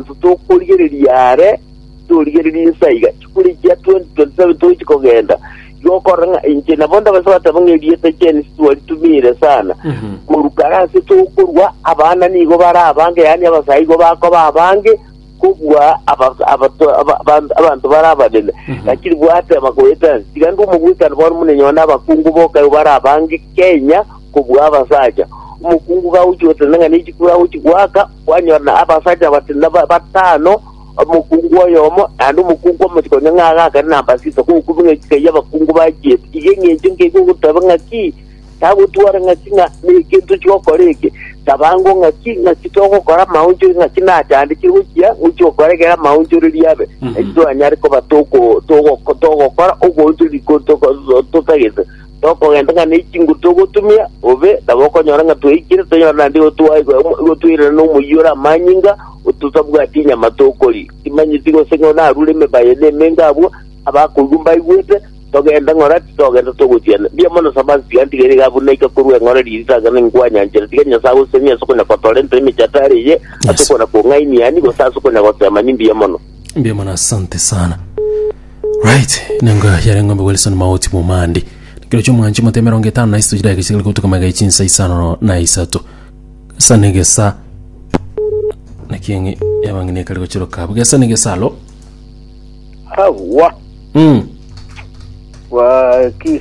Intwe tokorigereria aare, torigereria inse aiga. Chikuri chia 2027 togochia kogenda, igo okorora ng'a inche nabo ndabase goteba ng'a erieta Janice twaritumiire sana. Korwa kare ase tokorua, abana nigo bare abange, yaani abasae igo bakoba abange kobua aba- abato- aba- aba- abanto bare abanene. Lakini bwateba goeta nse, tiga ndue omogwekano bono buna enyora na abakungu bokayo bare abange Kenya kobua abasacha. Omokungu gagochia gotenena ng'a nechikuru agochia goaka, kwanyora na abasacha basinda ba- batano, omokungu oyomo, naende omokungu omosike onye ng'a agakane na mbasisa kogokubia ng'a echika y'abakungu bachiete. Iga eng'encho nkeigwe ogoteba ng'aki, tagotwara ng'aki ng'a nekinto chigokora eke, tabango ng'aki ng'aki togokora amaonchori ng'aki nachandekire gochia gochia gokora ekero amaonchoreri abe, Mhm. naki twanyare koba toko- togoko- togokora oboonchoreri ko- toko- totagete tokogenda ng'a ne chinguru togotumia, bobe nabo okonyora ng'a tweikire, tonyore naende igo twaigwa omo- igo twairana nomoyio ore amanyinga, ototabwati inyama tokoria. Timanyeti gose ng'a narure emebaye na emenga abwo, abakoigwa mbaigwete, togende ng'ora ki? Togende togotiana. Mbuya mono Samasi, tiga ntigere iga buna ika korwa eng'ora riritang'ani ninkwanyanchera, tiga Nyasae agosesenire ase okonya kotorentera emechatara eye, ase Yes. okona kong'ainia ani, gose ase okonya gosema, nimbuya mono. Mbuya mono asante sana right nengo yare ng'ombe wilson maoti bomandi kiro kio mwanchi mote emerongo etano na isitochira egesigiri gotuka magae chinsa isano na isato gesa na egesa nakieng'i yabang'ini ekari gochiroka abo gesa na egesa alo Hawa. mm. Waki.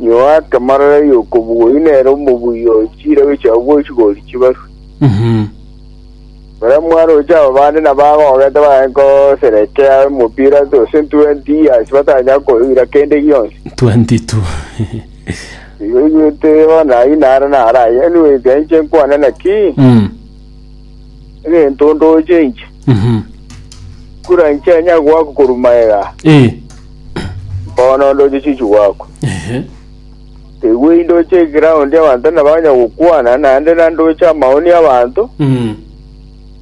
Inyoa atamarara y'okobugoi nere omobuya oyo chirego chiabo bw'echigori chibarwe. Mhm. Baria mwaroche aba bande nabagogete bagacha koserekea omopira tose 20 years batanyara koira kende gionsi. 22. Igo igwete bono ayio naro naraye anyways aye inche nkwane naki Mm. egento ndoche inche Mhm. kura inche anyare goaka korwa magega Eh. Bono ndoche chichu gwakwa. Ehe. Tegwe indoche eground y'abanto nabo banya gokwana, naende na ndoche amaoni y'abanto, Mm.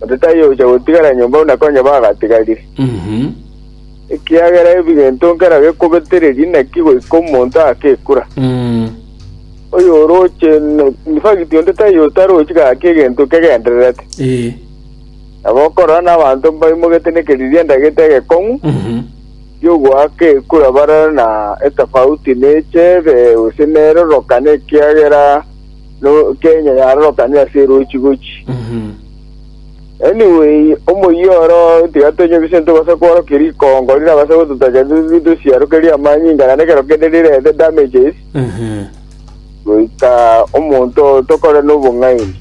onde taiyo ocha gotigara nyomba buna konya bagatigarire. Mhm. Ekiagera ebigento nkera gekobetereria naki goika omonto agakekura. Mm. Oyo oroche, n- in fact, onde taiyo otarochi gaki egento kegendererete. Eh. Nabo okorora n'abanto mbaimogete nekeriria ndagete egekong'u, Mhm. y'ogoaka ekura bare na etafauti nechebe, gose nerorokane ekiagera no Kenya yarorokane ase erochi gochi. Anyway, omoyio oro tiga tonyebise ntobase kworokia rikongo rirabase gototachera totebe tosiarokerie amanyinga naende ekero kende rirete damages goika omonto tokore nobong'aini.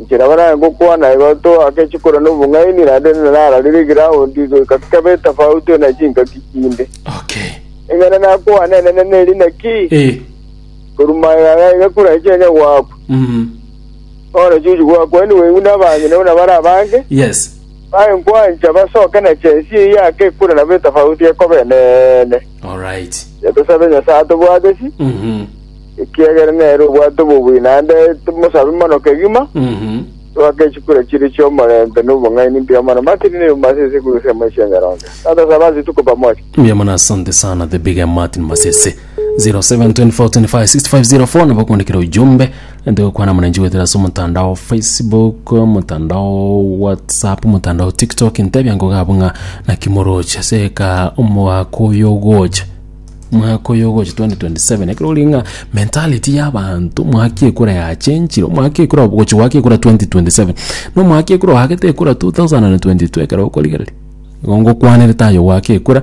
Inche nabo nare ngokwana igo, toake chikoro na obong'aini, naende nararire egiraundi goika kebe etafauti na chingaki chinde. Okay. Eng'ana nakwane enene neri naki? Eh. Korwa maega aya iga kure inche onye gwakwa. Mhm. Bono chiuchi gwakwa ni wenyu na abang'ina buna bare abange. Yes. Baye nkwancha basoke na chensi eye yake kure nabo etafauti ekoba enene. All right. Tosabe Nyasaye atobwatesi. Mhm. ekiagera nere obwate obobui, naende tomosabe mono kegima, Mhm. twake chikura chiria chi'omorembe na obong'aini mbuya mono. Martin Neiu Masese korwa ensemo ya Chianyaronge. Tata saba ase rituko pamoja. Mbuya mono asante sana the big M martin masese 0724256504 nabo kwandikira ujumbe ende gokwana mwananchi gwetera ase omotandao facebook omotandao whatsapp omotandao tiktok ntebia ngoga abwo ng'a naki moroche seka omwaka oyo ogocha Omwaka oyo ogocha 2027 ekero ori ng'a mentality ya abanto omwaka ekura ya change'ire omwaka ekura ogocha goaka ekura 2027 na omwaka ekura oagete ekura 2022 ekero okorigereria nigo ngokwanerete aye ogoaka ekura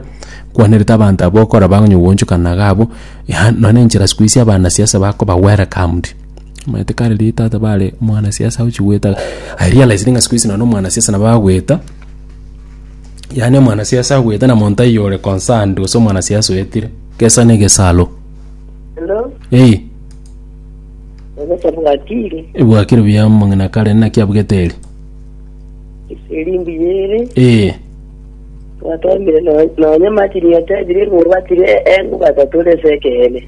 nkwanerete abanto abwo okora bakonya kogochokana iga abwo ya nonya na enchera siku hizi abana siasa bakoba welcomed omanyete kare riria tata bare omwana siasa ochi goeta I realized ng'a siku hizi nonya na omwana siasa nabo agweta. yaani omwanasiasa agwete na monto taiyo ore concerned gose omwanasiasa oetire gesa na egesaro Hello, ei egesa bwatire, ebwakire buya mong'ina kare naki abugete eri elimbi yere, ee twatwamire no- nonye Martin yatebire igo batire engo batatorese ekeene.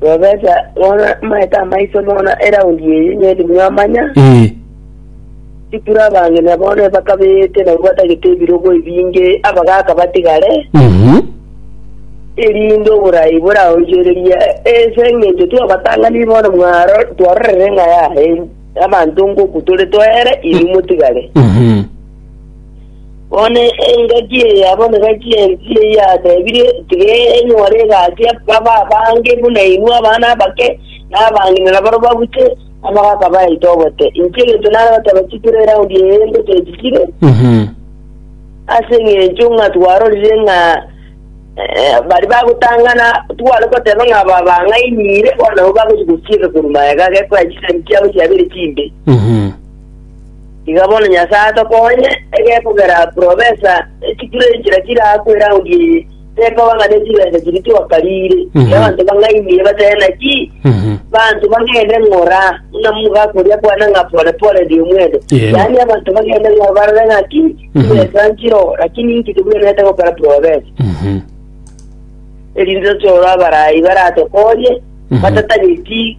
Bwebesa, bono amaete amaiso bono eraundi eye nyiri mwamanya, Ee, tikure abang'ina bono ebakabeete nabwo batagete ebirogo ebinge abagaaka batigare, mhm, erinde oboraai boraonchorerie, ense engencho twabatang'ani bono mwaro twarorire ng'a yaye abanto ng'oku tore toere, inwe motigare. mhm, Bono engaki eya bonegaki ensi eyatebire, Tigenyora egati babe abange buna inwe abana abake, na abang'inera barabwo babuche, amagaka bayaite obote. Inche egento nare goteba chikure eraundi eye ngotebichire, ase engencho ng'a twarorire ng'a eh, bari bagotang'ana tware goteba ng'a aba bang'ainire, bono nabo bagochi gochiika korwa magega gekoya chisemi chiabo chiabere chimbe. Iga bono Nyasae atokonye, egekogera profesa ne chikuro enchera chirakwe eraundi eye, tekoba ng'a ne chibesa chiria twakariire, Mhm. na abanto bang'aimire batebe naki, Mhm. banto bagende ng'ora buna moga koria kwane ng'a pore pore ndi omwendo. Yee. Yaani abanto bagende ng'ora barore ng'aki, Mhm. chibesa nchiro, lakini inki tibwenerete gokora profesa. Mhm. erinde toro abarai baratokonye Mhm. batatageti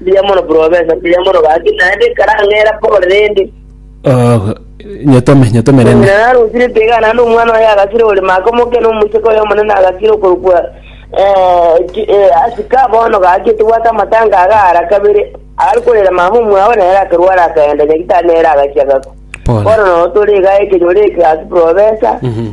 Mbuya mono profesa, mbuya mono gaki, naende nkarang'era pore rende. Oh, nyetome nyetome rende Omonyene narosire tega naende omwana oye agasire ore maka omoke na omocheka oye omonene agasire okorokwa eh, ki- eh, asika bono gaki tobwate amatanga agaara kabere ari korera mama omwao nere akarwara akaenda nyagitari nere agachia gakwa Pole. bono nogo tore iga ekenyoro eke gaki profesa Mhm.